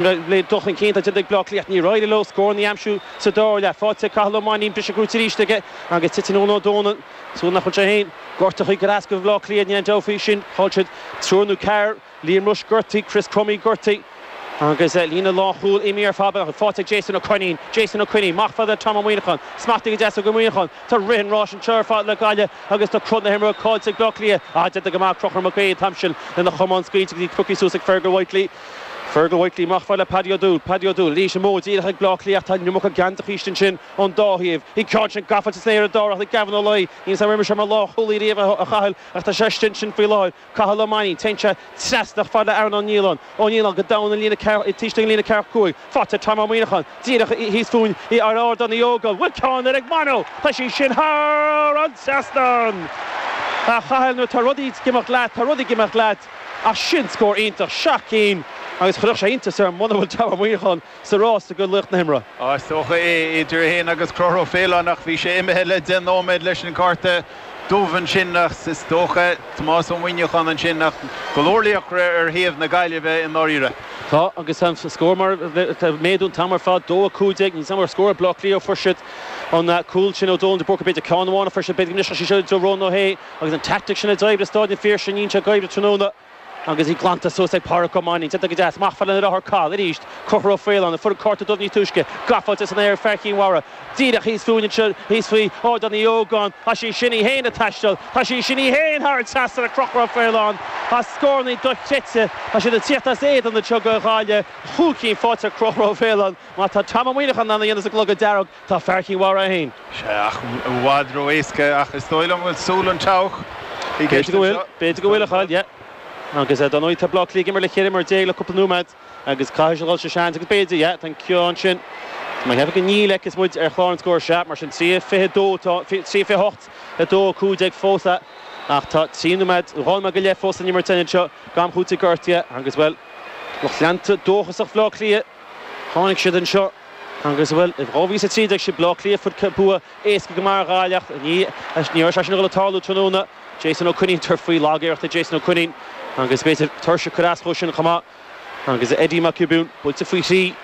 Le dul chun cinn atá déanta ag Bleá Cliath, níor éirigh leo scóranna a aimsiú sa dara leath. Faighte ag Cathal Ó Mainnín, brise brúite arís aige agus titeann Eoghan Ó Dónaill, súil nach bhfuil sé féin gortaithe chuig ar eascair Bhleá Cliath níl aon dabht faoi sin. Chaill siad triúr nó ceathrar, Liam Rushe gortaithe, Chris Crummey gortaithe agus líne lánchúil imithe ar fad acu. Faighte ag Jason Ó Coinín, Jason Ó Coinín, amach chomh fada le Tom Ó Muineacháin, smachtaithe go deas ag Ó Muineacháin, tá rith an ráis anseo ar fad le Gaillimh agus tá cruth na himeartha caillte ag Bleá Cliath, ah déanta go maith ag Conchúr Mac Aodha, Thompson lena chamán scaoilte go dtí crochta suas ag Fergal Whitely. Fergal Whitely, amach chomh fada le Paddy Ó Dúill, Paddy Ó Dúill, arís amú, díreach ag Bleá Cliath, tá an iomarca gean de Chríost ansin ón dá thaobh, bhí an ceann sin gafáilte san aer ag Darach, ag Gavin Ó Laoi, níl 's am ar imir sé mar lánchúlaí riamh a Chathail ach tá sé istigh ansin faoi láthair, Cathal Ó Mainnín, téann sé trasna chomh fada le Aaron Ó Nialláin, Aaron Ó Nialláin, go domhain an líne ceathracha, taobh istigh den líne ceathracha cúig, faighte ag Tom Ó Muineacháin, díreach thíos fúinn ar Ardán Uí Ógáin, bhuel ceann eile ag Mano, tá sí sin thar an trasnán, a Chathail nuair atá rudaí ag imeacht leat, tá rudaí ag imeacht leat. Ach sin scór iontach, seacht gcinn, agus chuirfeadh sé iontas orm muna bhfuil Tom Ó Muineacháin sa rás i gcomhair laoch na himeartha. Is dócha é. Idir é féin agus Conchúr Ó Faoláin, ach bhí sé imithe le deich nóiméad leis an gcárta dubh ansin, ach is dócha Tomás Ó Muineacháin ansin, ach go leor laochra ar thaobh na Gaillimhe i ndáiríre. Tá, agus tá an scór mar, tá ag méadú an t-am ar fad, dó a cúig déag, níl 's am ar scóráil Bleá Cliath, fuair siad an cúl sin ó Dónal de Búrca, b'fhéidir ceann amháin a fuair siad, b'fhéidir go mbrisfeadh sí seo do Rónán Ó H. Agus an teaictic sin a d'oibrigh i Staid an Phiarsaigh, níl sé ag oibriú tráthnóna, agus í glanta suas ag Pádraic Ó Mainnín, déanta go deas, amach chomh fada lena dheartháir Cathal, arís, Conchúr Ó Faoláin, a fuair an cárta dubh níos túisce, gafáilte san aer ag fear Chinn Mhara, díreach thíos fúinn anseo, thíos faoi Ardán Uí Ógáin, tá sí sin í féin ag taisteal, tá sí sin í féin thar an trasnán ag Conchúr Ó Faoláin, tá scórannaí dochreidte, tá siad ag tíocht as éadan na tiogha, a dhiabhail, cúig cinn faighte ag Conchúr Ó Faoláin, má tá Tom Ó Muineacháin in ann a dhéanamh sa gclogad dearg. Tá fear Chinn Mhara féin. Sea ach i bhfad ró-éasca, ach is dóigh liom go bhfuil súil an treabhadh i gceist anseo. B'fhéidir go bhfuil, b'fhéidir go bhfuil, a Chathail, yeah. Agus eh, dar ndóigh, tá Bleá Cliath ag imirt le ceithre imreoir déag le cúpla nóiméad agus caithfidh siad a dhul sa seans agus b'fhéidir, yeah, tá an ceann sin, tá mé ag ceapadh go níl, fheiceas muid ar chlár an scóir, sea, mar sin, trí a fiche a dó atá, trí a fiche a hocht, a dó a cúig déag fós a, ach tá trí nóiméad, dhá nóiméad go leith fós le n-imirt anseo d'am cúitimh gortaithe agus, bhuel, lucht leanta dóchasach Bhleá Cliath, tháinig siad anseo. Agus bhuel, i 2013 sea Baile Átha Cliath fuair siad bua éasca go maith ar Ghaillimh ach ní raibh sé sin a dhul ag tarlú tráthnóna. Jason Ó Coinín ag tabhairt faoi, lagiarracht ag Jason Ó Coinín agus b'fhéidir tuirse ag cur as dhó sin chomh maith. Agus Eddie Mac Giobún buailte faoi thrí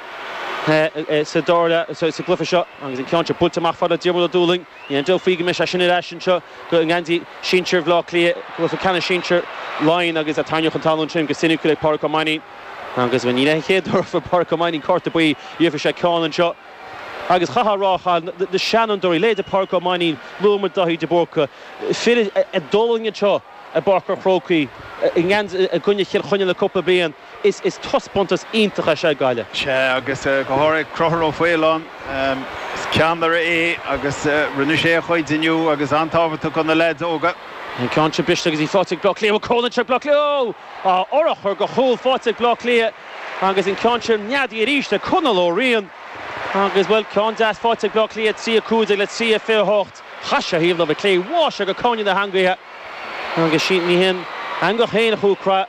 sa dara leath, sa gcluiche seo agus an ceann seo buailte amach fada ag Diarmuid Ó Dúlaing. Níl aon dabht faoi go mbeidh sé sin ar ais anseo go i ngeansaí sinsir Bhaile Átha Cliath, cluiche ceannais sinsir Laighean agus a tarraingíodh chun talún ansin go soiniciúil ag Pádraic Ó Mainnín. Agus bhuel ní hé an chéad uair a fuair Pádraic Ó Mainnín cárta buí gheobhaidh sé ceann anseo agus chaithfeá a rá cha na seanfhondúirí leithéid Pádraic Ó Mainnín luadh muid Dáithí de Búrca fir a d'fhulaing anseo i bPáirc an Chrócaigh i ngan i gcoinne Chill Chainnigh le cúpla bliain is is taispeántas iontach é seo ag Gaillimh. Sea agus go háirid Conchúr Ó Faoláin is ceannaire é agus rinne sé a chuid inniu agus an-tábhachtach do na leaids óga. An ceann seo briste agus tá ag Bleá Cliath cúl ag Bleá Cliath! á fhorchur go cúl faighte ag Baile Átha Cliath agus an ceann sin neadaithe arís ag Conal Ó Riain agus, bhuel, ceann deas faighte ag Baile Átha Cliath, 3-15 le 3-28. Chas sé ar thaobh na láimhe clé thuas i gcúinne na heangaithe agus ní haon eangach féin a chuaigh cruaidh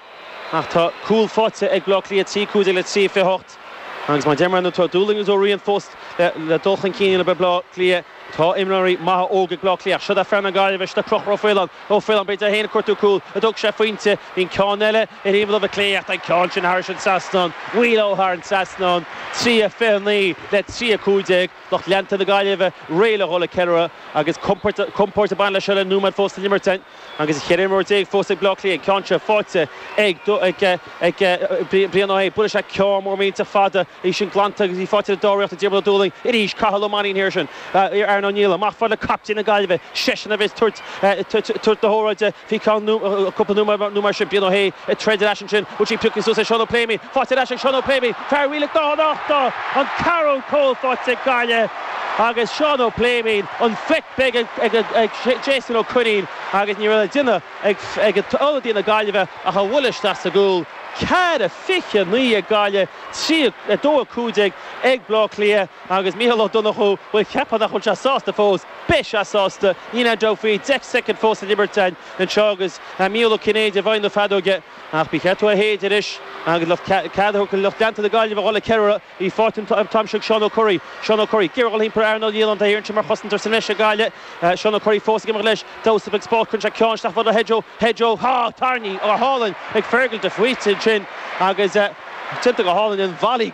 ach tá cúl faighte ag Baile Átha Cliath, 3-15 le 3-28. Agus mar a deirim tá Ó Dúlaing agus Ó Riain fós le dul chun cinn le Baile Átha Cliath. Tá imreoirí maithe óga ag Baile Átha Cliath. Seod é fear na Gaillimhe, seod é Conchúr Ó Faoláin, Ó Faoláin b'fhéidir é féin ag cuartú cúl ach thóg sé a phointe. Bhí an ceann eile imithe amú ó chlé ach tá an ceann sin thairis an trasnán. Wheelo thar an trasnán. 3:29 le 3:15. Lucht leanta na Gaillimhe réidh le dhul ag ceiliúradh agus compóirt ag baint le seo le nóiméad fós le n-imirt. Agus ceithre imreoir déag fós ag Baile Átha Cliath, an ceann seo faighte ag Brian Ó hAodha, buaileann sé ceann mór millteach fada, í sin glanta agus í faighte i ndáiríre ag Diarmuid Ó Dúlaing arís, Cathal Ó Mainnín thiar sin, Aaron Niland. Amach fad le captaen na Gaillimhe, seisean a bheas ag tabhairt na hóráide faoi cheann cúpla nóiméad nó mar sin, Brian Ó hAodha ag troid leis ansin, bhuail sé an pioc suas ag Seán Ó Pléimeann, faighte ar ais ag Seán Ó Pléimeann, fear Mhíleac Dún an Uchta! An ceathrú cúl faighte ag Gaillimh! agus Seán Ó Pléimionn an flick beag ag Jason Ó Coinín agus ní raibh le déanamh ag ionadaí na Gaillimhe ach í a bhualadh isteach sa gcúl. Ceathair fiche a naoi ag Gaillimh, trí a dó a cúig déag ag Baile Átha Cliath agus Micheál Ó Donnchú, bhuel cheapfá nach bhfuil sé sásta fós, beidh sé sásta, níl aon dabht faoi, deich soicind fós le n-imirt againn anseo agus Micheál Ó Cinnéide i bhfeighil na feadóige ach ba cheart dó í a shéideadh anois agus cead a thabhairt do lucht leanta na Gaillimhe a dhul ag ceiliúradh. Bhí fáilte an t-aimsir ag Seán Ó Curraoin. Seán Ó Curraoin, Gearradh iompair earnáil Dhialann de hÉireann sin mar chosaint ar Saineis ag aile eh Seán Ó Curraoin fós ag imeacht leis. Damhsa a bheith ag spórt cuireann sé ceann isteach fada Hedgerow, Hedgerow, há! Tairní, á hálainn ag Fergal de Faoite ansin agus eh déanta go hálainn an Mhalaí.